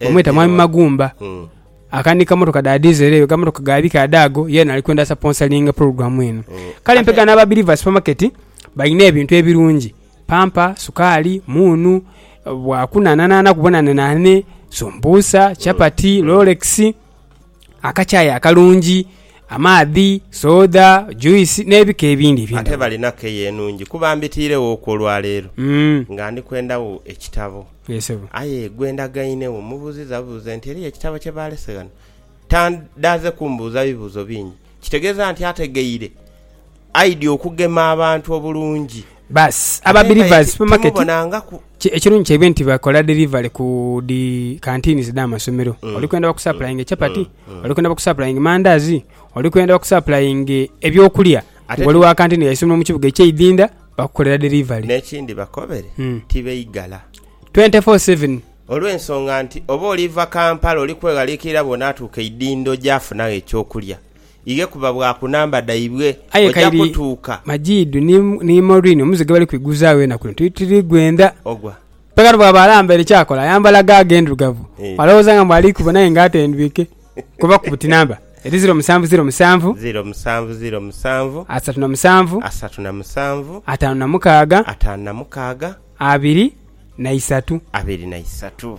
Bamweta Mwami Magumba. Aka ni kamotoka dha diesel eyo, gamotoka ga bika adhaago, yeena ali kwenda asaponsalinge pulogulaamu eno. Kale mpegha n'aba Believers Supermarket balina ebintu ebirungi, pampa, sukaali, muunu, bwakunhanhanhaana kubonanenane, sumbuusa, chapati, lolekisi. akakyayi akalungi, amaadhi, soda, juisi, n'ebika ebindi eby'endhaghulo. Ate balina keya enungi kuba mbitiirewoku olwa leero nga ndi kwenda wo ekitabo. Aye gwe ndagaine wo mmubuuzizza buuza nti eriyo ekitabo kye baalese ghano. Tandaaze kumbuuza bibuuzo bingi. Kitegeeza nti ategeire? Aidhi okugema abantu obulungi. Baas aba Believers Supermarket ekirungi kyaibwe nti bakola delivery ku dhi canteens edh'amasomero. Mm. Oli kwenda bakusapulayinge chapati, mm. Mm. oli kwenda bakusapulayinge mandaazi, oli kwenda bakusapulayinge ebyokulya. Wali wa canteen ya isomero mu kibuga eky'eidhinda bakukolera delivery. N'ekindi bakobere tibeigala. 24/7. Olw'ensonga nti oba oliva Kampala oli kweghaliikirira bw'onaatuuka eidhindo gyafunagho ekyokulya. ighe kuba bwa ku namba dhaibwe. Aye Oja kairi kutuuka. Majidu ni, ni Maureen omuze ghe bali kwiguzaagho enaku dhino tuli, tuli gwendha. Ogwa. Aye kati bw'aba alambaire ki akola? Ayambala gaagi endhirugavu. Eeh. Alowooza nga mbu ali kubo n'aye nga atendwike. Kuba ku buti namba. Eri ziro musanvu ziro musanvu. Ziro musanvu ziro musanvu. Asatu na musanvu. Asatu na musanvu. Ataanu na mukaaga. Ataanu na mukaaga. Abiri na isatu. Abiri na isatu.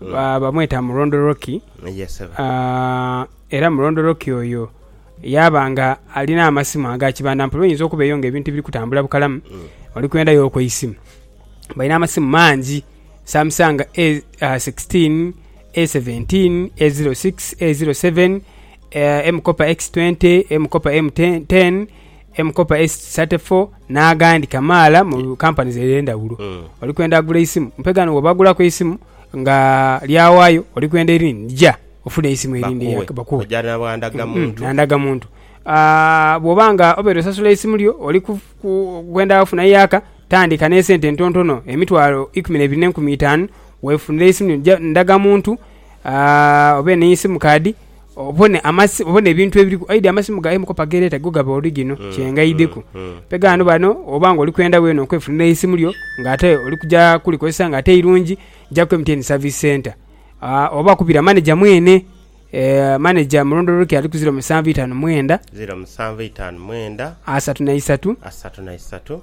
Bamweta Mulondoloki, era Mulondoloki oyo yaaba nga alina amasimu aga kibanda mpola. Oyinza okuba eyo nga ebintu tibiri kutambula bukalamu, oli kwenda yo ku isimu. Balina amasimu mangi, Samsung A sixteen, A seventeen, A zero six, A zero seven, M-Kopa X twenty, M-Kopa M ten. M Kopa Esiti Sate Fo n'agandi kamaala mu kampanizi edh'endhaghulo. Oli kwenda gula eisimu? Mpe ghano bw'oba ogulaku eisimu nga lyawaayo oli kwenda erindi, ja ofune eisimu erindi bakughe. Na ndagamuntu. Bw'oba nga obeire osasula eisimu lyo oli kwenda ofuna yaaka, tandika n'esente entontono, emitwalo ikumi n'ebiri n'enkumi itaanu, weefunire eisimu lyo. Ja ndagamuntu obe ni simu kaadi. obone amasi obone ebintu ebiri aidi amasimu gaye mukopa gereta go gaba origino mm, kyengaideku mm, mm, pegano bano oba nga oli kwenda wena okwefunira eisimu lyo nga ate oli kuja kulikozesa nga ate irungi ja ku MTN service center uh, oba kubira manager mwene eh, manager mulondoloke ali ku 0759 mwenda 0759 asatu na isatu asatu na isatu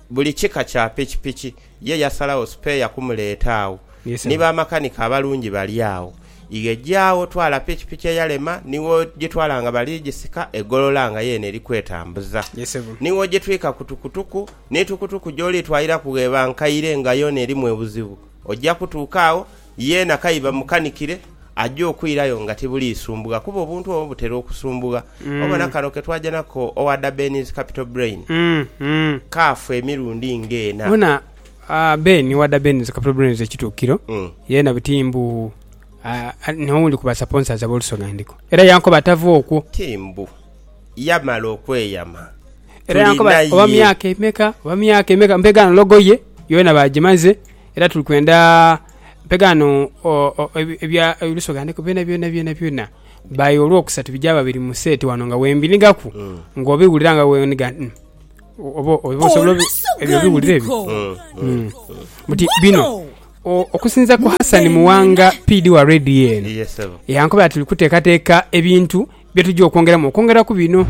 Buli kika kya pikipiki ye yasalagho sipeeya kumuleeta agho. Ni bamakanika abalungi bali agho. Ighe ja agho twala pikipiki eyalema ni w'ogitwala nga bali gisika e Golola nga yeene eri kwetambuza. Ni w'ogitwika ku tukutuku. Ni tukutuku gy'olitwaliraku bw'eba nkaire nga yoona erimu obuzibu, oja kutuuka agho Yeena k'aye bamukanikire, aja okwirayo nga tibuliisumbugha kuba obuntu obwo butera okusumbugha. Obona kano ke twaja nako owa Da Benny's Capital Brain, kaafa emirundi ng'ena. Bona Ben owa Da Benny's Capital Brain ekituukiro, yeena buti mbu n'owundi ku basaponsazi ab'olusonandiko. Era yankoba atava okwo. Ti mbu yamala okweyama. Era yankoba oba myaka emeka, oba myaka emeka, mpegaano logo ye yoona baagimaze. Era tuli kwenda mpegho ghano ebya oluso ghandeku byona byona byona byona by olwokusatu bigyaba biri mu set ghano nga wembinhigaku nga obiwulira nga wenhiga oba oba osobola ebyo obiwulira ebyo buti bino okusinzira ku Hassan Muwanga PD wa Radio eno Yes ssebo. yankoba ati tuli kutekateka ebintu Bye tuja okwongeramu okwongera ku bino,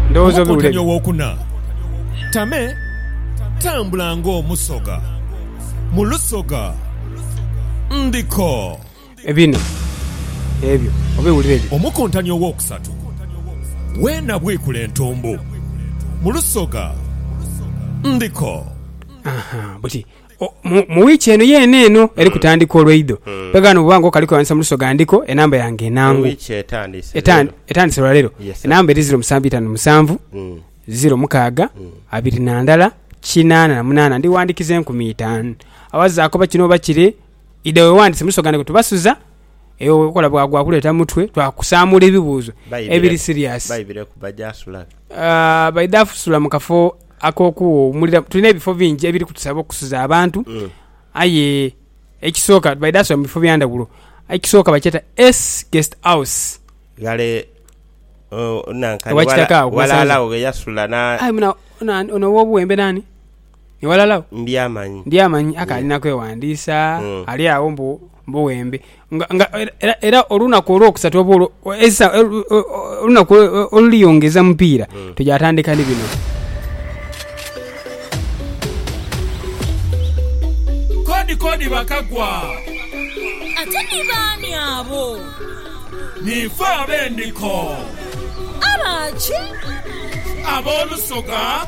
ndowooza obiwulire. Omukontane ow'okuna, Tame tambula ng'omusoga mu lusoga ndiko. Bino ebyo obiwulire byo. Omukontane ow'okusatu, Weena bwikula entumbu mu lusoga ndiko. Aha, buti mu wiiki eno yeene eno eri kutandika olweidho. Mpegaano bwoba nga okali kwewandiisa mu luso ghandiko enamba yange enangu. Ewiiki etandise leero. Etandise lwa leero. Yes sir. Enamba eri ziro musanvu itanu musanvu, ziro mukaaga, abiri na ndala, kinaana na munaana. Ndi wandikiza enkumi itaanu. Awazaaku oba kino oba kire, idha wewandiise mu luso ghandiko tubasuza. Eyo bwokola bwagwa kuleeta mutwe twakusaamuula ebibuuzo Baibire. ebiri serious. Baibire kuba gyasula. Aah baidha fusula mu kafo. Ak'okuwuumulira, tulina ebifo bingi ebiri kutusaba okusuza abantu, aye ekisooka baidha suba mu bifo bya ndhawulo. Ekisooka bakyeta S Guest House. Ghale oh, nanka Owa ni kitaka wala- agho, gwe walaala sanze. agho ghe yasula na Aye muna, ona, ono ow'obuwembe naani? Ni walaala agho? Ndyamanyi. Ndyamanyi, akaali na kwewandiisa, Mm. ali agho mbu Buwembe. Nga, nga, era, era olunaku olwokusatu oba olwo, esa, olunaku oluliyongeza mupiira mm. tuja atandika ni bino kodi kodi bakagwa ate ni baani abo nife abendiko abaki ab'olusoga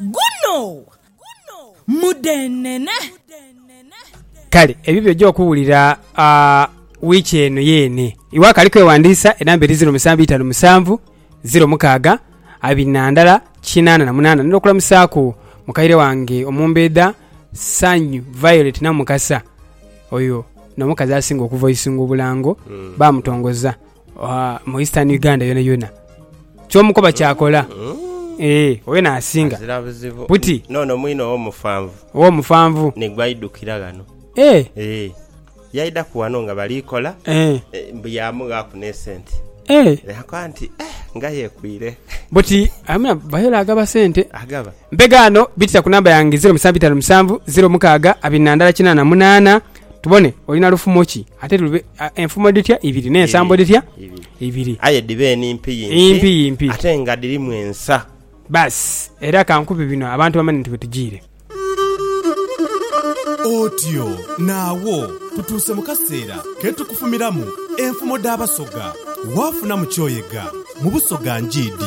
Guno mudhenene. Kale ebyo by'oja okuwulira wiiki eno yeene. Iwe akali kwewandiisa, enamba eri ziro musanvu itanu musanvu ziro mukaaga abiri na ndala kinaana na munaana. Ntera okulamusaaku mukaire wange omumbeedha Sanyu Violet Namukasa. Oyo n'omukazi asinga okuvoisinga obulango, baamutongoza. mu Eastern Uganda yonayona kyomukoba kyakola eeh oyo nasinga Azira buzibu Buti. Nono mwine owomufanvu owomufanvu nigwe aidukira ghano eeh eeh yaidaku ghano nga bali kola eeh eh, mbu yamughaku nesente eeh nakoba nti eeh nga yekwire buti amina bayola agaba sente agaba Mpegaano bitisa ku namba yange ziro musanvu itaanu musanvu ziro mukaaga abiri na ndala kinaana munaana tubone olina lufumo ki ate lube enfumo dhitya ibiri n'ensambo dhitya ibiri aye dhiba enimpiyimpi impiyimpi ate nga dhirimu ensa. Baasi era ka nkube bino abantu bamanye nti wetujiire. Otyo naagho tutuuse mu kaseera ke tukufumiramu enfumo dh'Abasoga. Waafunamu ky'oyega mu Busoga njiid.